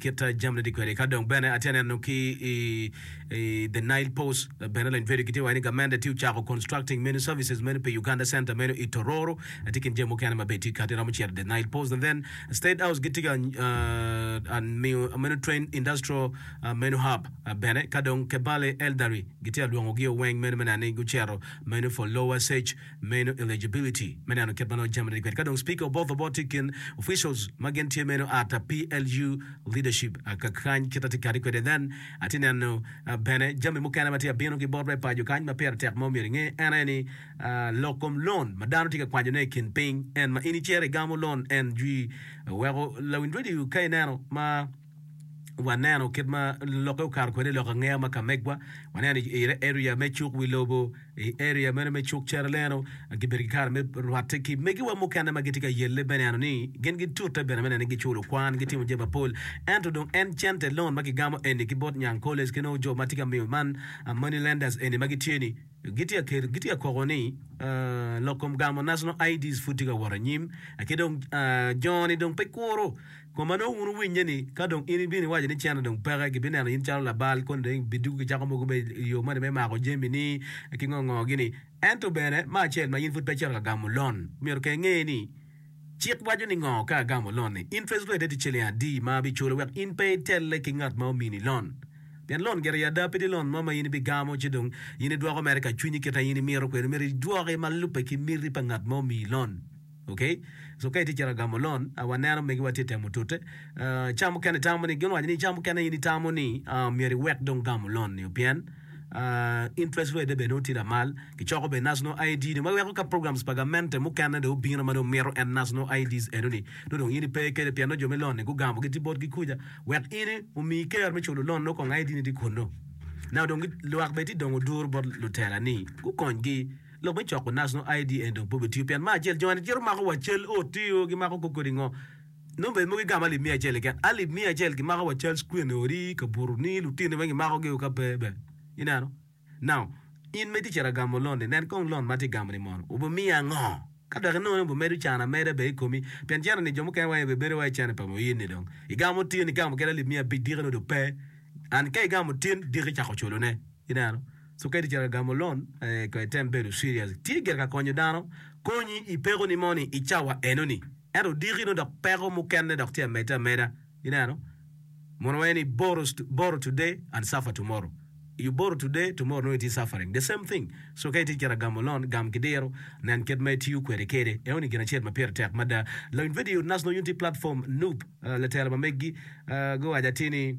kit jami ne tye kwede ka dong bene atye neno ki i the nile post bene lony video kitye waco ni gamente tye ocako constructing many services meno pi uganda center meno i tororo atye kin jami mukene ma be tye kati romo cito the nile post and then state house gitye ka miyo meno train industrial meno hub bene ka dong kebale eldery gitye alwongo gi oweng meno mena ni gucero meno for lower sage meno eligibility me neno kit ma nongo jami tye kwede ka dong Speaker obotho bot tye kin officials ma gin tye meno ata PLU leadership ka kany kit atye kati kwede then atye neno bene jami mukene ma tye abino ki bot me paco kany ma pire tek ma omyero inge en aye ni lok kom loan ma dano tye ka kwanyo ne ikin piny en ma in icito igamo loan en jwi weko lawiny radio ka ineno ma waneno kit ma lokke okato kwede i lok angeya ma ka megwa waneno i area me cuk wi lobo i area meno me cuk ceraleno gibedo ki kare me rwatte ki megiwa mukene ma gitye ka yelle me neno ni gin gitute bene me neno ni giculo kwan gitimo jami mapol ento dong en cente loan ma kigamo eni ki bot Nyang College ki nongo jo ma tye ka miyo man money lenders eni ma gitye ni gitye ka koko ni lok kom gamo National IDs pud tye ka wot anyim, ki dong jo-ni dong pe kuro. Kun ma nongo wun wuwinye ni, ka dong in ibino iwaco ni cente dong peke, gibineno in calo labal, koni dong ibidwogo ki cako mogo mere i yo moni me mako jamini ki ngo ngo gini. Ento bene, me acel ma in pud pe icito ka gamo lon, myero kenge inge ni, Cik waco ni ngo ka agamo lon-ni? Interest rate-e tye ciling adi ma abiculo wek in pe itelle ki ngat ma omini lon? Pien lon gire i ada pe tye lon mo ma in ibigamo ci dong in idwoko mere ka cwinyi kit ma in imito kwede. Myero idwoke ma lubbe ki miti pa ngat ma omiyi lon. Ok? So ka itye cito agamo lon, a waneno megiwa tye temo tute, ah, ca mukene itamo ni, gin owaco ni ca mukene in itamo ni, ah, myero iwek dong gamo lon-nio pien, interest rate-e bene nongo tye lamal. Kicoko bene national ID ni ma weko ka programs pa gamente mukene dong obino ma dong mito en national IDs eno-ni nongo dong in ipe kede pien nongo jo me lon-ni gugamo giti botgi kuca wek in omi ker me culo lon nongo kong ID-ni tye kunnu. Naka dong lwak bene ti dongo duru bot lutela ni gukonygi. Lok me coko national ID eni dong pe obitiyo pien me acel joni gicito makowa cal ot-ti o gimako koko kodi ngo. Nongo bed mogo igamo alip miya acel keken. Alip miya acel kimako wa Charles Queen i odi, i kabuto ni, lutino weng kimako gi o ka pe be. Ineno? Now, in ma itye cito agamo loan ni, nen kong loan ma atye gamo ni mono, obi miya ango? Ka dok inongo ni obi medo can ameda be i komi, pien cene ni jo mukene wa be bedo wa i cene pa mo in ni dong igamo tin, igamo kede alip miya abic diki ni dong pe, and ka igamo tin diki cako culone. Ineno? Sukedi calo agamo lon ee kong item bedo serious. Tye gire ka konyo dano konyi i peko ni mo ni i cawa eno ni. Ento diki no dok peko mukene dok tye amede ameda. Ineno? Mono waye ni borrow, borrow today and suffer tomorrow. You borrow today, tomorrow nongo itye suffering. The same thing. So ka itye cito agamo lon, gam ki diro, nen kit ma itiyo kwede kede. Eno ni gin acel ma pire tek mada. Lawiny video nas nongo yung tye platform Nup, latela ma meggi, aa, guwaco atir ni.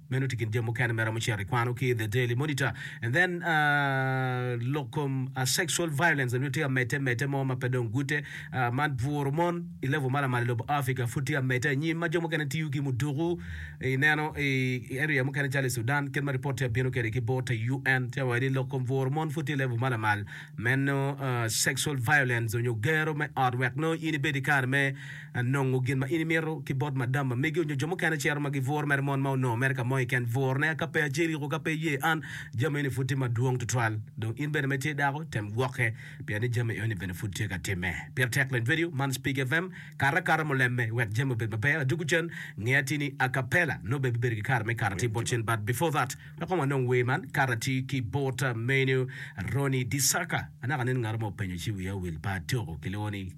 Meno tye kin jami mukene ma iromo cito ikwano ki i The Daily Monitor. And then uh, lok kom uh, sexual violence nyo tye amete mete mo ma pe dong gute uh, man bwuro mon i level ma lamal i lobo Africa pud tye amete anyim ma jo mukene tiyo ki muduku ineno i, i area mukene calo i Sudan kit ma report tye abino kede ki bot te UN tye wadi lok kom bwuro mon pud tye level ma lamal meno uh, sexual violence nyo gero me ot wek no in ibedi kare me nongo gin ma in imito ki bot madam ma megi onyo jo mukene cito ma gi bur mere mon ma onongo mere ka mo i ken bur ne ka pe ace iriko ka pe iye an jami eni pud tye madwong tutwal dong in bene ma itye dako tem gwoke pien ni jami eni bene pud tye ka time pire tek lend vedio man speak FM kare akata mulemme iwek jami obed maber adugu cen nge atir ni acapella nongo bene bibedo ki kare me kato atir bot cen but before that wek kong wanong wer man kato atir ki bot menu Ronnie Disaka anaka nen ngato mo openyo ci wiya owil pa atoko kilwongo ni.